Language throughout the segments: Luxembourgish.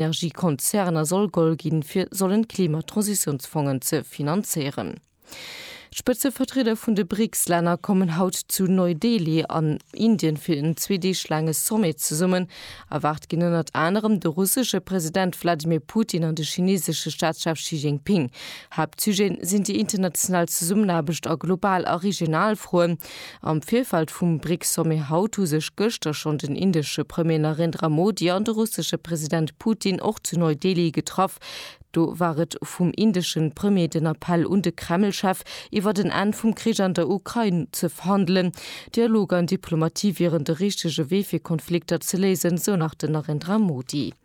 Energiekonzerner soll goll ginn, fir sollen d'Klimatransitiounsfongen ze finanzéieren. D'Spëtzevertrieder vun de BRICS-Länner kommen haut zu Neu-Delhi an Indien fir en zwee Deeg laange Sommet zesummen. Erwaart ginn ënnert anerem de russesche President Wladimir Putin an de chineesesche Staatschef Xi Jinping. Haaptsujeten sinn déi international Zesummenaarbecht a global a regional Froen. Am Virfeld vum BRICS-Sommet haut hu sech gëschter schonn den indesche Premier Narendra Modi an de russesche President Putin och zu Neu-Delhi getraff. Do war et vum indesche Premier den Appell un de Kreml-Chef, iwwert en Enn vum Krich an der Ukrain ze verhandelen. Dialog an Diplomatie wieren de richtege Wee fir Konflikter ze léisen, sou nach den Narendra Modi.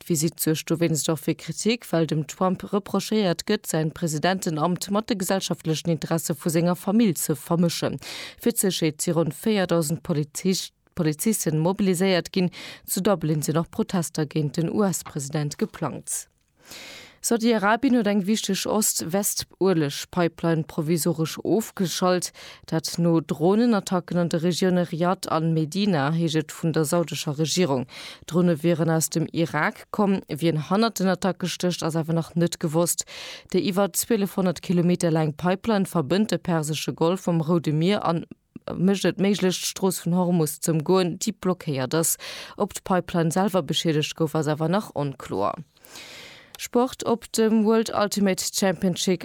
D'Visitt suergt dowéinst och fir Kritik, well dem Trump reprochéiert gëtt, säin Presidentenamt mat de gesellschaftlechen Interesse vu senger Famill ze vermëschen. Fir d'Sécherheet si ronn 4.000 Polizisten mobiliséiert ginn. Zu Dublin sinn och Protester géint den US-President geplangt. Saudi-Arabien huet eng wichteg Ost-West-Ueleg-Pipeline provisoresch ofgeschalt, dat no Dronenattacken an de Regioune Riyadh an Medina, heescht et vun der saudescher Regierung. D'Drone wieren aus dem Irak komm. Wien hannert den Attacke stécht, ass awer nach net gewosst. Déi iwwer 1.200 Kilometer laang Pipeline verbënnt de persesche Golf mam Roude Mier an. mécht et méiglech d'Strooss vun Hormus z'ëmgoen, déi blockéiert ass. Ob d'Pipeline selwer beschiedegt gouf, ass awer nach onkloer. Sport, Op dem World Ultimate Championship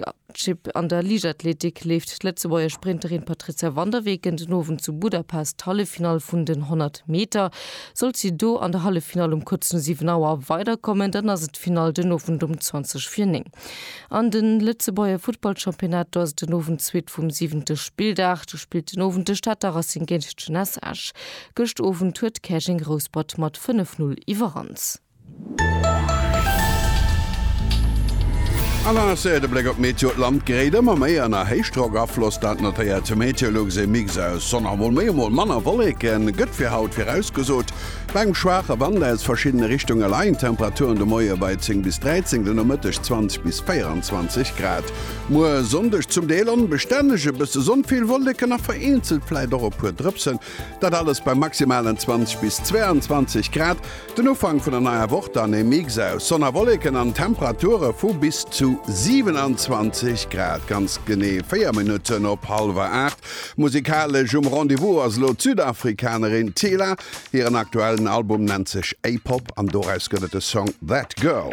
an der Liichtathletik leeft d'Lëtzebuerger Sprinterin Patrizia van der Weken den Owend zu Budapest d'Halleffinall vun den 100 Meter. Sollt si do an der Halleffinall um kuerz no 7 Auer weiderkommen, dann ass et d'Finall den Owend um 20 vir 9. An de Lëtzebuerger Futtballchampionnat, do ass et den Owend d'Suite vum siwente Spilldag. Do spillt den Owend de Stater Racing géint d'Jeunesse Esch. Gëscht Owend huet Käerjeng Rouspert mat 5, 0 iwwerrannt. An der Serie de Bléck op d'Meteo, D'Land geréit ëmmer méi ënner Héichdrockafloss, dat notéiert d'MeteoLux. Ee Mix aus Sonn a mol méi a mol manner Wolleke gëtt fir haut virausgesot. Bei engem schwaache Wand aus verschiddene Richtunge leien d'Temperaturen de Moie bei 10 bis 13, den Nomëtteg 20 bis 24 Grad. Muer Sonndeg zum Deel onbestänneg, e bësse Sonn, vill Wolleken a vereenzelt vläit och e puer Drëpsen, dat alles bei maximalen 20 bis 22 Grad. Den Ufank vun der neier Woch dann e Mix aus Sonn a Wolleken an Temperature vu bis zu 27 Grad. Ganz genee 4 Minutten op hallwer 8. Musikalesch um Rendez-vous ass elo d'Südafrikanerin Tila. Hiren aktuellen Album nennt sech A-Pop an doraus gëtt et de Song That Girl.